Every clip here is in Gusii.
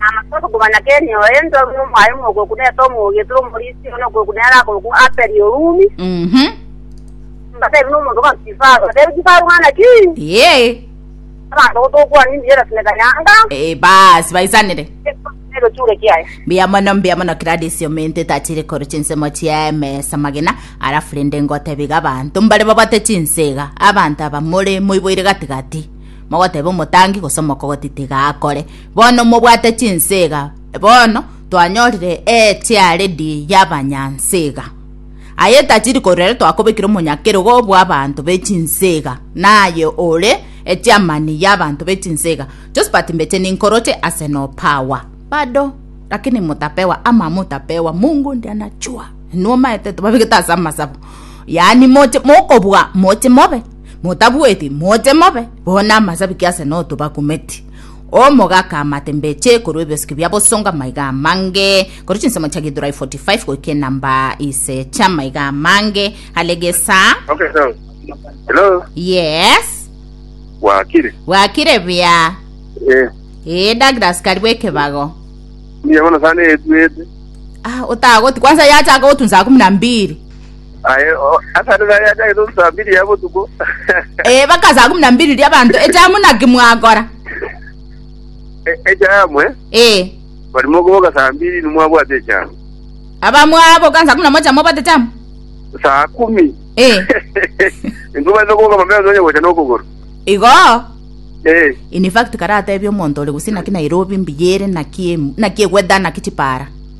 Namache komanya keri nyowe ense ore nomoaye omogoku nete omogia tore omorisia one okoku nere akoku Aperi Orumi. Mhm. Mbatebi nomonto bwa Kifaru. Mbatebi Kifaru ng'ana ki? Ee. Abanto gotokwana imbiera sineka nyanga. Ee, basi baisanire. Nero chure kiaye. mbuya mono mbuya mono Gladys omente tachire koro chinsemo chia emesa magena arafu rende ngotebiga abanto mbare babate chinsega abanto aba more moiboire gatigati mogoteba omotangi gose omokogoti tiga akore Bono mobwate chinsega, bono twanyorire echiaredi y'abanyansega. Aye tachiri korwa ere twakobekire omonyakerogo bw'abanto be chinsega, naye ore echiamani y'abanto be chinsega. Josphat mbeche ninkoroche ase nopawa. Bado, lakini motapewa ama motapewa, Mungu ndiye anachua. Inwe omaete tobabegete ase amasabo. Yaani moche mokobua moche mobe, motabueti moche mobe, bono amasabi ki ase notobakumeti. Omogaka amate mbeche korwa ebiosiki bia bosongo amaiga amange, korwa chinsemo chia Githurai 45 goika enamba ise chia amaiga amange, are gesa. Okay, so. Hello? Yes. Wakire? Wakire bia? Eh. Eh, Douglas kari bwekebago. Niye bono sana etwete. Ah, otagoti. Kwanza yacha agotunza kumi na mbili. Aye, o, ase nigo yari achagete ase saa mbiri ya botuko. Eh, baka saa kumi na mbiri ria abanto echamu naki mwakora E- Echamwe, Eh, bari mokoboka saa mbiri nimwabwate echamo. abamwaboka saa kumi na moja mobate chamu Saa kumi. Eh. Ntubaete koboka mapema nonya gocha nokogoro. igo Eh, in fact karatebia omonto ore gose naki nairobi mbuya ere naki em- naki egweta naki chipara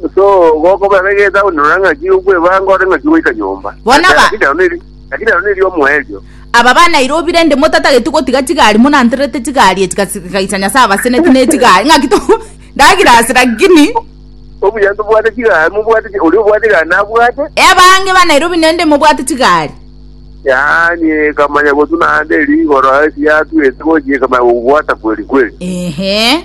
Gose ogokobera egeita onyorore ng'aki okwebanga ore ng'aki goika nyomba. Bono Ase- aba- Lakini ero neri- lakini ero neri omoerio. Aba ba Nairobi rende motatageti gotiga chigari monanterete chigari echi kasi- kaisa Nyasaye abaseneti ne chigari ng'aki to ndagira ase lakini Obuya ntobwate chigari mobwate chi- oria obwate chigari nabwate. ebange ba Nairobi nende mobwate chigari Yaani ekamanya gotuna ande rigoro ase yatwete gochia ekamanya gobwata kweri kweri. ehe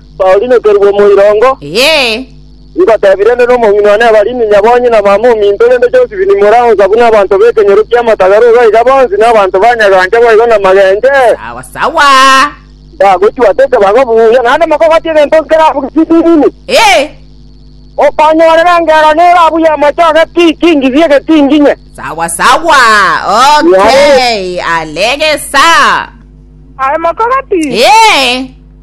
Baorinekerigwe omoirongo. Ee. Ngotebia rende nomong'ina one Abarini, Nyabonyi na mama ominto, rende Joseph ni mura onsa buna abanto b'ekenyoro ki'amatagare iga iga bonsi nabanto banyagancha boigo namagenche. Sawa sawa. Mbagochua ase ekebago buya, naende mokogote egento onsi kera abuge chisinini. Ee. Okonyorera engero nere abuge amache age ki kingisi egetinginye. Sawa sawa. Okay. Alegesa. Aye mokogati. Ee.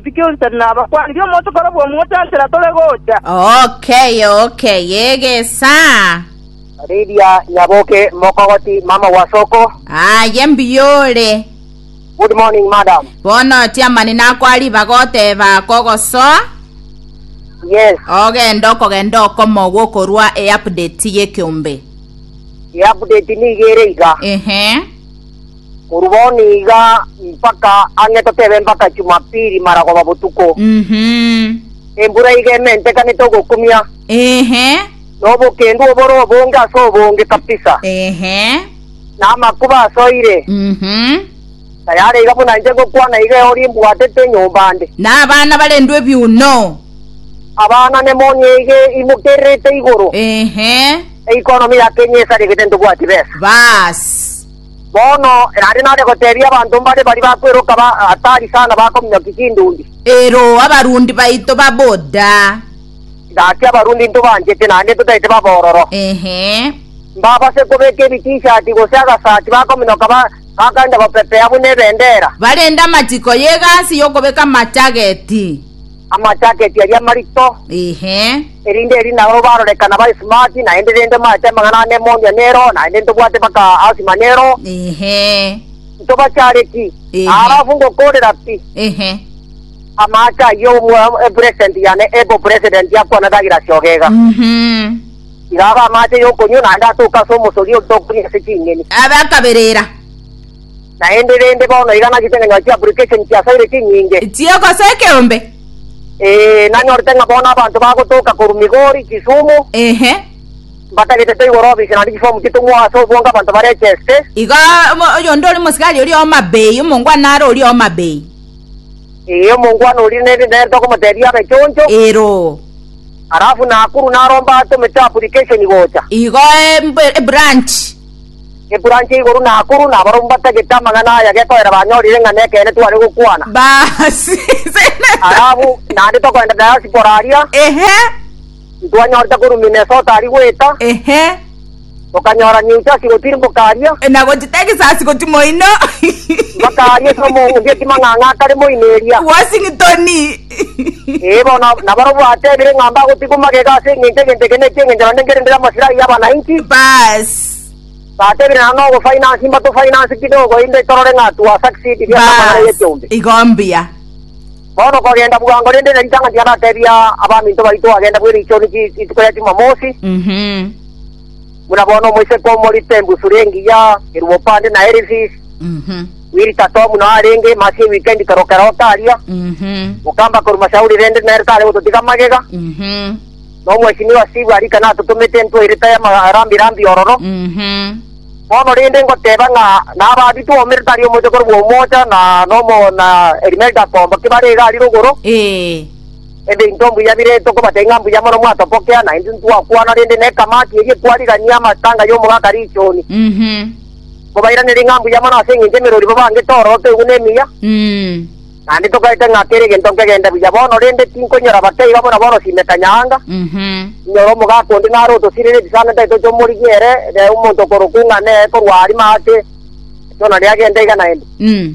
Isiko Yosefu nabakwanire omonto korobua omote enchera tore gocha. Okay, okay, egesa. Lydia Nyaboke Mokogoti mama wa Soko. Aye mbiyore. Good morning madam. Bono chiamani nakwa ribaga oteba kogosoa Yes, ogenda okogenda okomogwa okorwa e-update y'ekeombe. i-update niga ere iga. Ehe. Korwa bono iga mpaka ang'e totebe mpaka Chumapili maragoba botuko. Mhm. Embura iga ementekanete ogokumia, Ehe. na obokendu obore obonge ase obonge kabisa, Ehe. na amakuba asoire. Mhm. Tayare iga buna inche ngokwana iga eori mbwatete enyomba ande. Na abana barendwe ebiuno. Abana nemonyeige imokererete igoro, Ehe. eikonomi ya Kenya esaregete ntobwati besa. Baas. Bono erande nare goteebia abanto mbare baria bakweroka ba hatari sana bakominyokia chindundi. Ero abarundi baito baboda. Gaki Abarundi ntobanchete naende totaete babororo. Ehe. Mbabase kobeka ebitishati gose agasati bakominoka ba, bakaenda gopepea buna ebendera. Barende amachiko y'egasi y'okobeka amachageti. amachaketi aria amarito, Ehe. erinde eri nao barorekana ba smart, naende rende maete amang'ana ane mondia nero, naende ntobwate baka asima nero, Ehe. ntobachareti, Ehe. arafu ngokorera pi. Ehe. Amache ayio omwa- e president yane ebo president yakwana dagira siogega. Mhm. Igaba amache yokonywa naende atoka ase omosori otokuria ase ching'eni. Abakaberera. Naende rende bono iga nagete ng'a nyore chiapplication chia Saire chinyinge. Chie gose ekeombe. Ee, nanyorete ng'a bono abanto bagotoka korwa Migori, Kisumu. Ehe. Mbatagete toigore ofisi naende chifomu chitong'we ase obonge abanto barecheste. Iga omo- oyonde ore mosigari oria Omabei, omongwana are oria Omabei. Ee, omongwana oria nere nere tokomotebia abe choncho. Ero. Alafu Nakuru naromba atomete application gocha. Igo e- mbe- ebranch. Geturanche igoro na akoro, na abarabwo mbatagete amang'ana aya gekoera banyorire ng'a nekeene tware gokwana. Basi, seneta. Arabwo naende tokoenda diaspora aria. Ehe. Ntwanyorete korwa Minnesota aria goeta. Ehe. Tokanyora New Jersey gotirimboka aria. E, na gochi Texas gochi moino. Mpaka aria ase omonge otima ng'a ng'akare moino eria. Washington. Ee, bono nabarabwo atebire ng'a mbagotigwa magega ase engencho egento eke ne eki'engenchero ndengerereire amasirai y'abananchi. Baas. Batebire naro nogofinance mbatofinance kidogo inde torore ng'a twa succeed ria Baas. ekamwana eye chumbi. Igo mbuya. Bono kogenda bwango rende na ritang'ani tiandatebia abaminto baito agenda bw'erichoni chi- rituko ria Jumamosi. Mhm. buna bono omoiseke omorito embusuri engiya eruopande na Elifis, Wiritatomu nao arenge emasi ye wikendi toroke roke aria, mokamba korwa Mashauri rende nere tare gototiga magega, na omwechimi wa Sibu arika natotomete entweirita y'amarambirambi ororo. Bono rende ngoteba ng'a nababi twomire tari omochie korwa omoocha, na nomo na Elimelda komba ki bare iga ari rogoro. Ebinto mbuya biretwo kobata ing'a mbuya mono mwatopokea, na intwe ntwakwana rende nekamati eria ekwarigania amatanga y'omogaka Richoni. Mhm. Mobairanere ing'a mbuya mono ase engencho emerori babangete orooto igwe nemiya, Mm. naende togaete ng'a kera egento nkegende buya bono, rende tinkonyora bake iga buna bono simekanya anga. Mhm. Inyora omogaka onde nare otosirere ebisaanete aye toche omorigia ere, ree omonto okorokwa ing'a neye korwa arimo ake, etona riagenta iga naende. Mm.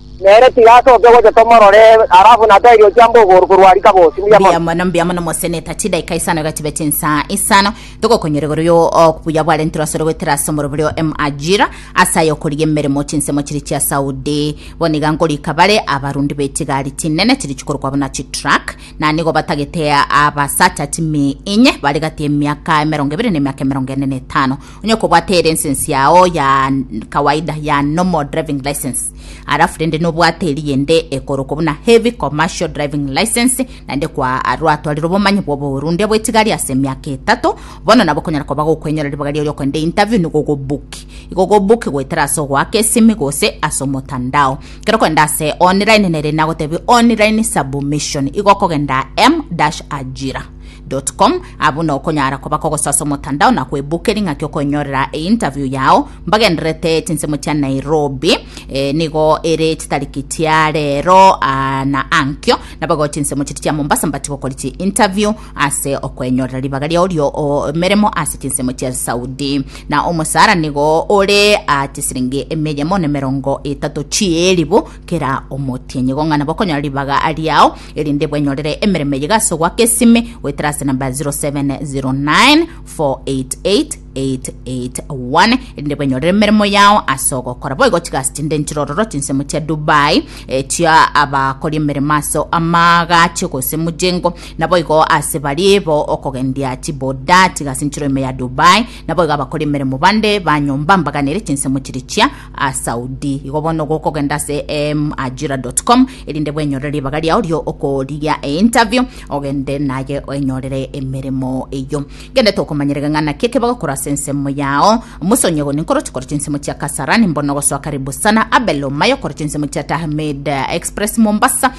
Nere tiga asoke gocha tomorore, alafu natoe riochia mbogoro korwa rika bosi. Mbuya mono. Mbuya mono, mbuya mono moseneta, chidaika isano iga chibe chinsa isano, togokonyora igoro yo obuya bwarenterwe asore goetera ase omorobori o Emajira, ase aya okorigia emeremo chinsemo chiria chia Saudi. Bono iga ngorika bare abarundi be chigari chinene chiria chikorokwa buna chitruck, na nigo batagete abasacha chimiinye, bare gati y'emiaka emerongo ebere na emiaka emerongo ene na etano. Onye okobwate elensensi yao ya kawaida ya normal driving license arafu rende nobwate eri yende ekorokwa buna heavy commercial driving license naende kwa arwatwarire obomanyi bw'obohorundia bw'etigari ase emiaka etato bono nabo okonyara koba gokwenyora ribaga riao riokogenda interview nigo ogobuki igo ogobuki goetera ase ogoaka esimi gose ase omotandao kero okogenda ase online nere nagotebi online submission igo okogenda m-ajira com abwo nokonyara koba kogosasa omotandao na kwebook ring'aki okoinyorera interview yao mbagenderete chinsemo chia nairobi e, nigo ere chitariki chia rero ah, na ankio nabago chinsemo chiri chia mombasa mbati gokori chi interview ase okoinyorera ribaga riao rio o, meremo ase chinsemo chia saudi na omosara nigo ore ah, chisiringi emeyemo ne merongo etato chieribu kera omotienyi gong'ana bokonyora ribaga riao erinde bwenyorere emeremo eye gase ogoaka esime goetera ase namba 0709488881 erinde bwenyorere emeremo yao ase ogokora boigo chigasi chinde nchirororo chinsemo chia dubai eh, chia abakori emeremo ase amagache gose mujengo naboigo ase barie bo okogendia chiboda chigasi nchiro ime ya dubai naboigo abakori emeremo bande banyomba mbaganere chinsemo chiri chia Asaudi. Igo bono gokogenda ase ajira.com erinde bwenyorere ribaga riao rio okorigia e interview ogende naye enyorere emeremo eyo gende tokomanyerega ng'ana ki ekebego kora ase ensemo yao musonye goni nkoro chikora chinsemo chia kasarani mbono gosoa karibu sana abelo mayo kora chinsemo chia tahmid express mombasa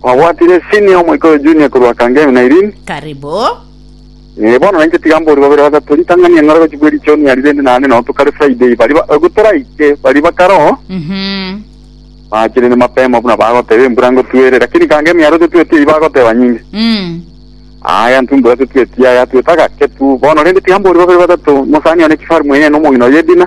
Kwabwatire senior omoika oyo junior korwa Kangemi na Irene. Karibu. Eh, bono nainche tiga mbori babere batato ritang'ani eng'ora gochi bwe richoni ari rende naende nao tokare Friday bari ba- ego toraike bari bakaro Mhm. bachire ne mapema buna bagoteba embura ngotwere lakini Kangemi aro tetweti eyi bagoteba nyinge Mm. aya ntumbura tetweti aya tweta gake tu bono rende tiga mbori babere batato mosani one kifaru mwenene omogina oyo Edina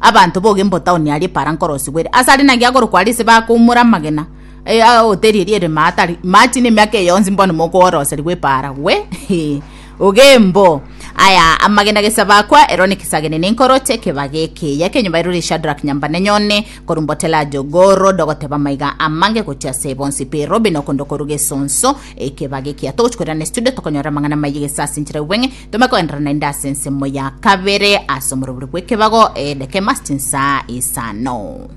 Abanto bogemba o taoni aria Epara nkorosibwa ere ase aria naki akorokwa aria ase bakoumora amagena aya ahoteri eria ere Maatari, Maati na emiaka eye yonsi mbono mokooroserigwa Epara. Gwe, ee, ogembo aya amagena gesa bakwa, ero nekisaagene na enkoro ch'ekebaga ekeya ekenyomba erore Shadrach nyamba na enyone, korwa Mbotelajo goro dogoteba maiga amange gochia ase bonsi pe Robe na okondo korwa gesonso ekebaga ekeya. Togochi korera ne studio tokonyora amang'ana maye gesa ase enchera y'obweng'e. Tome koenderana naende ase ensemo ya kabere ase omorobori bw'ekebago, edekema ase chinsa isano.